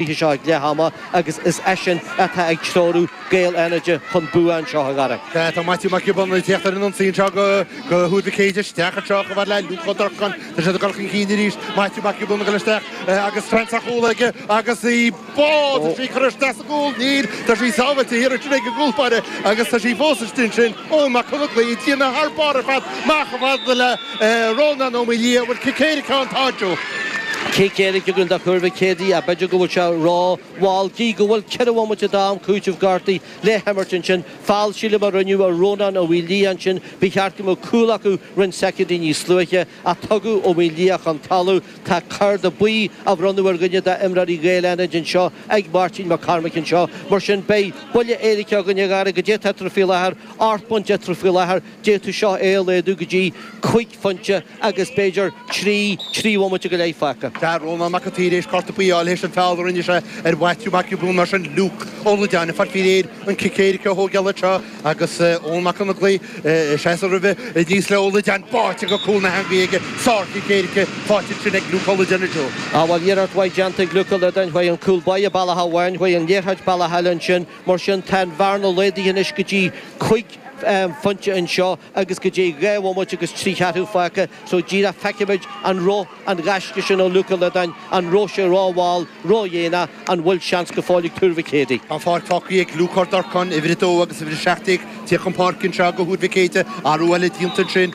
oíche seo ag leath ama agus is eisean atá ag treorú Gaeil Fhánada chun bua anseo i gCarna. Tá Maitiú Mac Giobúin ag teacht ar an ionsaí anseo go Thuar Mhic Éadaigh. Isteach anseo chomh fada le Luke Ó Durcáin. Tá siad ag dul chun cinn arís. Maitiú Mac Giobúin ag dul isteach agus seans ar chúl aige agus í buailte. Tá sí curtha isteach sa gcúl. Níl. Tá sí sábháilte thiar ansin ag an gcúl báire agus tá sí fós istigh ansin. Eoin Mac Conaglaigh ag déanamh thar barr ar fad amach chomh fada le Rónán Ó Maolaodha, Bhfuil cic éirice ann? Tá, Joe. Cic éirice againn do Thuar Mhic Éadaigh, ach b'fhéidir go bhfuil sé ró mhall gidh go bhfuil ceithre bhomaite d'am cúiteamh gortuithe le himirt ansin. Feall sílim a rinneadh ar Rónán Ó Maolaodha ansin, ba cheart go mbeadh cúl acu roinnt soicindí níos luaithe, ach tugadh Ó Maolaodha chun talamh. Tá cárta buí á bhronnadh ar dhuine de imreoirí Ghaeil Fhánaid anseo ag Máirtín Mac Cormaic anseo, mar sin beidh buille éirice againn a Gary goidé tá eatarthu faoi láthair, ocht bpointe eatarthu faoi láthair. D'fhéadfadh seo é a laghdú go dtí cúig phointe agus b'fhéidir trí, trí bhomaite go leith fágtha. Tá Rónán Mac an tSaoir tar éis cárta buí a fháil tar éis an feall a rinne sé ar Mhaitiú Mac Giobúin. Mar sin, Luke Ó Loideáin ag fáil faoi réir an cic éirice a thógáil anseo agus Eoin Mac Conaglaigh ag seasamh roimhe. Aníos le Ó Loideáin, báite go cúl na heangaí aige. Sárchic éirice faighte ansin ag Luke Ó Loideáin a Joe. Bhuel iarracht mhaith déanta ag Luke Ó Loideáin, chuaigh an cúl báire bealach amháin, chuaigh an liathróid bealach eile ansin. Mar sin, tá an bhearna laghdaithe anois go dtí cúig phointe anseo agus go dtí dhá bhomaite agus trí cheathrú fágtha so díreach feicfimid an raibh an gaisce sin ó Luke Ó Loideáin, an raibh sé ró-mhall, ródhéanach, an bhfuil seans go fóill ag Tuar Mhic Éadaigh? Tá an pháirc fágtha ag Luke Ó Durcáin, uimhir 2 agus uimhir 17, ag tíocht chun páirce anseo go Thuar Mhic Éadaigh, athrú eile déanta ansin.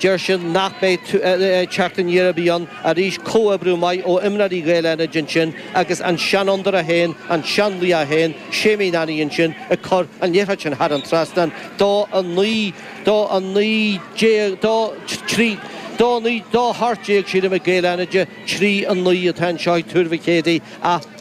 Deir sin nach mbeidh teacht aniar ar bith ann arís, comhoibriú maith ó imreoirí Ghaeil Fhánaid ansin agus an seanfhondúir é féin, an seanlaoch é féin, Séimí Nanny ansin ag cur an liathróid sin thar an trasnán 2-19, ní hea, 2-18 tá siad imithe Gaeil Fhánaid, 3-9 atá anseo ag Tuar Mhic Éadaigh ach.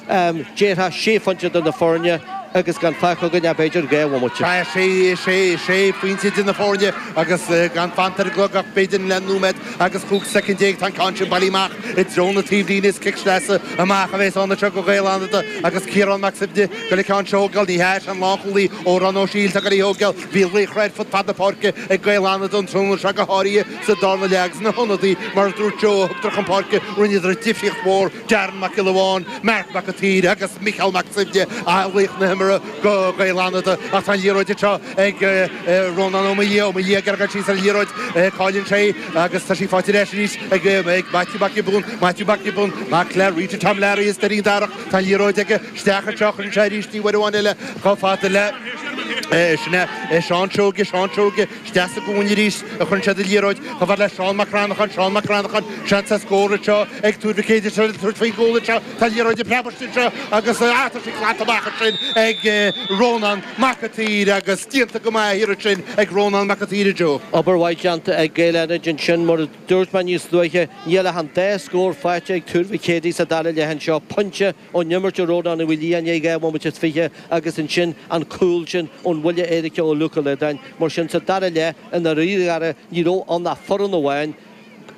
Sea tá sé phointe idir na foirne agus gan fágtha againn ach b'fhéidir dhá bhomaite. Sea sé phointe idir na foirne agus gan fanta ar an gclog ach b'fhéidir leath nóiméad agus chúig soicind déag. Tá an ceann sin bailithe amach i dtreo na taobhlíne. Is cic sleasa amach a bheas ann anseo go Gaeil Fhánada agus Ciarán Mac Suibhne ag goil an ceann seo a thógáil. Ní hea, sé an lánchúlaí Odhrán Ó Siadhail atá ag goil í a thógáil. Bhí laochra ar fud fad na páirce ag Gaeil Fhánada an tráthnóna seo go háirithe sa darna leath agus na hionadaí mar a dúirt Joe a thugadar chun páirce rinneadar difríocht mhór. Darren Mac Giolla Bháin, Marc Mac an tSaoir agus Micheál Mac Suibhne a laoch na himeartha go Gaeil Fhánada ach tá an liathróid anseo ag Rónán Ó Maoildhia, Ó Maoildhia ag iarraidh a ghoil síos ar an liathróid, cailleann sé é agus tá sí faighte ar ais arís ag Maitiú Mac Giobún, Maitiú Mac Giobún, mac le Rita Tom Larry as Doirín Darach, tá an liathróid aige, isteach anseo, chuireann sé arís í uair amháin eile chomh fada le, sin é, Seán Seoige, Seán Seoige. Isteach sa gcúinne arís a chuireann siad an liathróid, chomh fada le Seán Mac Rannacháin, Seán Mac Rannacháin, seans ar scór anseo ag Tuar Mhic Éadaigh, triail tabhairt faoin gcúl anseo, tá an liathróid ag preabairt anseo agus ah tá sí glanta amach ansin ag Rónán Mac an tSaoir agus déanta go maith thiar ansin ag Rónán Mac an tSaoir, Joe. Obair mhaith déanta ag Gaeil Fhánada ansin, mar a dúirt mé níos luaithe, níl ach an dá scór faighte ag Tuar Mhic Éadaigh sa dara leath anseo, pointe Ón imirt ó Rónán Ó Liatháin i ndiaidh dhá bhomaite is fiche agus ansin an cúl sin ón bhuille éirice ó Luke Ó Loideáin. Mar sin, sa dara leath, i ndáiríre, ní raibh ann ach foireann amháin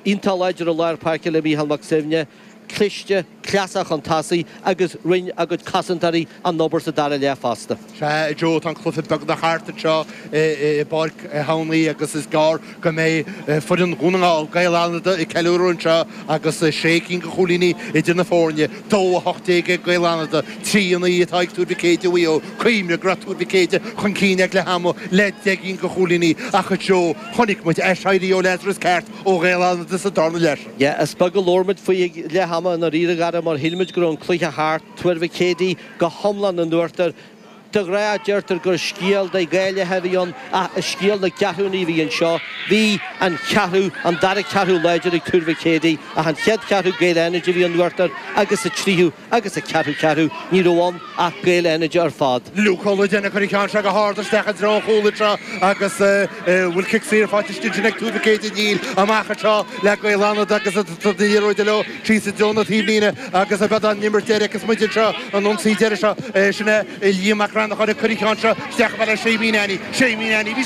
iontach láidir i lár páirce le Micheál Mac Suibhne, cliste, cleasach chun tosaigh agus rinne a gcuid cosantóirí an obair sa dara leath fosta. Sea, a Joe, tá an cluiche beagnach thart anseo i bPáirc Uí Chuana agus is gearr go mbeidh foireann Dhún na nGall, Gaeil Fhánada, ag ceiliúradh anseo agus sé cinn de chúilíní idir na foirne. Dó a hocht déag ag Gaeil Fhánada, trí a naoi atá ag Tuar Mhic Éadaigh Mhaigh Eo. Cuimhnigh go raibh Tuar Mhic Éadaigh chun cinn ag leath ama le deich gcinn de chúilíní ach, a Joe, chonaic muid aiséirí ó Lazarus ceart ó Ghaeil Fhánada sa darna leath. Sea, is beag a labhair muid faoi ag leath ama, i ndáiríre, Garry, mar shíl muid go raibh an cluiche thart. Tuar Mhic Éadaigh go hiomlán in uachtar. De ghnáth deirtear gur scéal de dhá leath a bhí ann ach is scéal na gceathrúnaí a bhí anseo. Bhí an cheathrú, an dara ceathrú láidir ag Tuar Mhic Éadaigh ach an chéad cheathrú Gaeil Fhánada a bhí in uachtar agus sa tríú agus sa ceathrú ceathrú ní raibh ann ach Gaeil Fhánada ar fad. Luke Ó Loideáin a chuir an ceann seo go hard isteach i dtreo an chúl anseo agus an bhfuil cic saor faighte ansin ag Tuar Mhic Éadaigh. Níl amach anseo le Gaeil Fhánada agus an liathróid leo. Síos i dtreo na taobhlíne agus b'fhéidir an imirt deiridh agus muid anseo an ionsaí deiridh seo. Sin é Liam Mac Rannacháin a chuir an ceann seo isteach bealach Séimí Nanny. Séimí Nanny. Bhí sé.